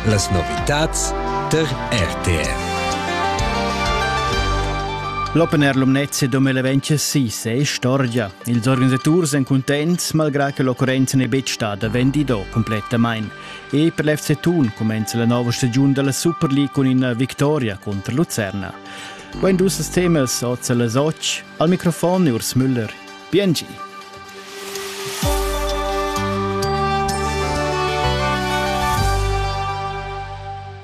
Las novitads tar RTR. L'Open Air Lumnezia 2026 è storia. Ils organisaturs èn cuntents, malgrà che l'occurrenza n'è betg stada vendida complettamain. E per l'FC Thun cumenza la nova stagiun della Super League cun ina victoria contro Lucerna. Quando ussas temas oz las 8. Al microfon Urs Müller. Biengi.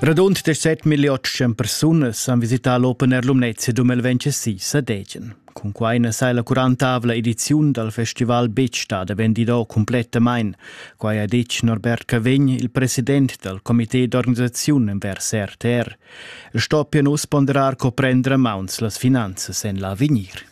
Radund 17 million persunas han visità l'Open Air Lumnezia 2026 a Degen. Cun quai na sai la 40 ediziun dal festival betg stada vendida cumplettamain. Quai ha ditg Norbert Cavegn, il president dal comité d'organisaziun envers RTR. El stoppia nus ponderar co prendere mauns las finanzas en l'avegnir.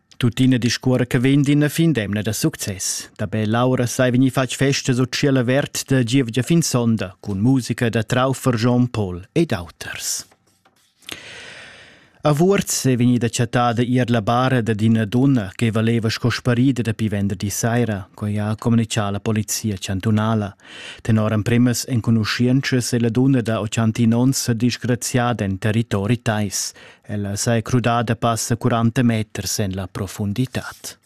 Tuttina discuora che vegn d'ina fin d'emna da success. Dabei Laura sai vegnir fatg festa sut ciel avert da gievgia fin sonda cun musica da Traufer Jean Paul ed auters. A Wurz è vegnida chattada ier la bara da d'ina donna che valeva sco sparida dapi venderdi saira, coi ha comunicà la polizia chantunala. Tenor emprimas enconuschientschas è la donna da 81 onns disgraziada en territori tais, Ella s'ei crudada passa 40 meters en la profunditad.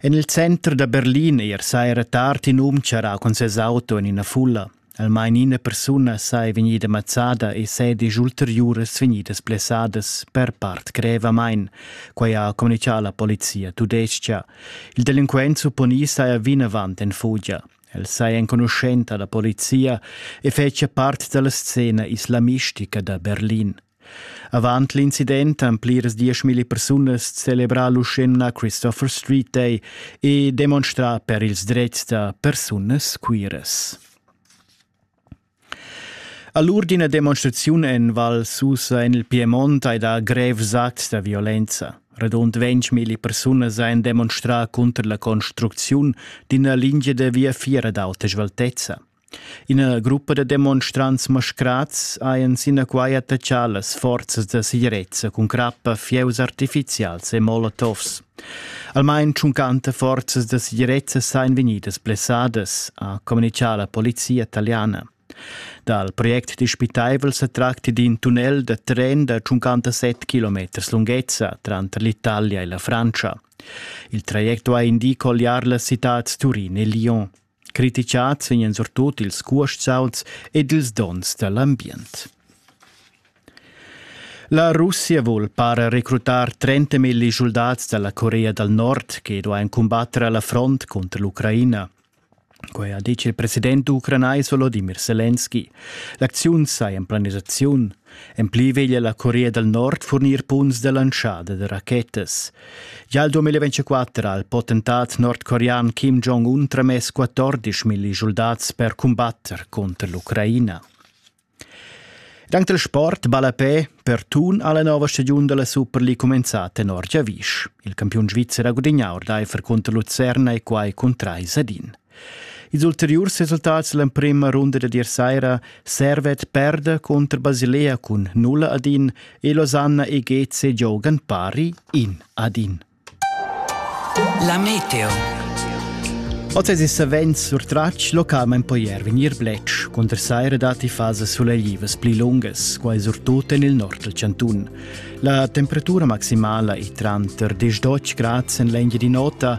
En il center da Berlin er saira tard in um charrà cun ses auto en ina fulla. Almain ina persuna sei vegnida mazzada e sedisch ulteriuras vegnidas blessadas per part grevamain, quai ha communichà la polizia tudestga. Il delinquent supponì saja vinavant en fugia. El sei enconuschenta da polizia e fetschia part dalla scena islamistica da Berlin. Avant l'incident han pliras dieschmilli persunas celebrà l'uschenna Christopher Street Day e demonstrà per ils drets da persunas queeras. Allur d'ina demonstraziun en Val Susa en il Piemont hai dà grev sat da violenza. Radund ventgmilli persunas han demonstrà cunter la construcziun d'ina lingia da viafier ad auta sveltezza. Ina gruppa da demonstrants mascrads hajan sinaquai attachà las forzas da segirezza cun crappa, fieus artifizials e molotovs. Almain tschuncanta forzas da segirezza sajan vegnidas blessadas, ha communitgà la polizia italiana. Dal project dispitaivel sa tracti d'in tunnel da tren da 57 km lunghezza tranter l'Italia e la Francia. Il traject duai indicar colliar las citads Turin e Lyon. Critichats vegnan surtut ils cuostauns ed ils donns da l'ambient. La Russia vul para recrutar 30 milli soldats dalla Corea dal Nord che duain combattere alla front contro l'Ucraina. Quai ha detg il president ucranais Volodymyr Zelensky. L'acziun saja in planisaziun En pli veglia la Corea dal Nord furnir punts da lantschada da rachetas. Gia il 2024 ha il potentat nordcorean Kim Jong-un tramess 14 milli soldats per cumbatter conter l'Ucraina. Dank del sport balla pe per tun alla nova stagiun della Super League comenzata tenor Giavisch. Il campion svizzer ha gudignato d'Eifer contro Lucerna e quai con 3 sadin. Ils ulteriurs resultats l'emprema runda da dir saira Servet perda contro Basilea cun 0 ad 1 e Losanna e Geze giogan pari 1 ad 1. La meteo. Oz es savens surtratg localment po ier vegnir bletsch conter saira datti fase suleglivas pli lungas, quai surtut en il nord del Cantun. La temperatura maximala è tranter 10 grads en l'engia di nota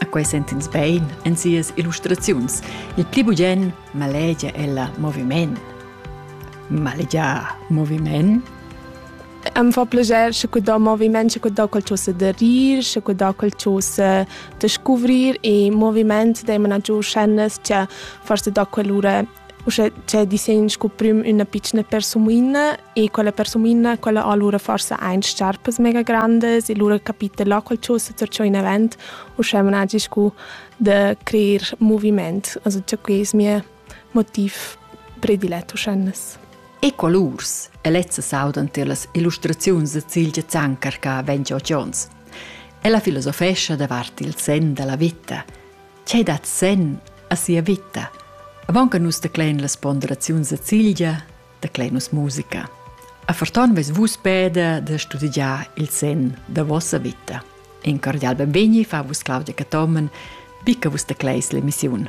A quei sent'ins bein en sias illustraziuns. Il pli bugen malegia ella moviment. Malegiar moviment Am fa piacer sche cu da moviment, sche cu da quel cho se da rir, sche cu da quel cho se da scuvrir e moviment dei mena giù scene che forse da quell'ura Uschè cè disegn scu prüm üna pitschna persumoina e quella persumoina quella ha lura forsa aint sciarpas mega grandas e lura capita là qualchosa zur cho inavant uschè managi scu da creer movimaint. Also cha que es mia motiv predilet uschennas. Ecolurs e lezza saudan tier las illustraziuns da Cilgia Zanker che vegn giò Jones. Ella filosofescha davart il sen da la vita – Che dat sen a sia vita? Avon che nus teclein las ponderaziuns da Cilgia, teclein nus musica. A Ferton veis vus peda da studiar il sen da vossa vita. In cordial benvegni fa vus Claudia Cathomen, bi che vus tecleis l'emissiun.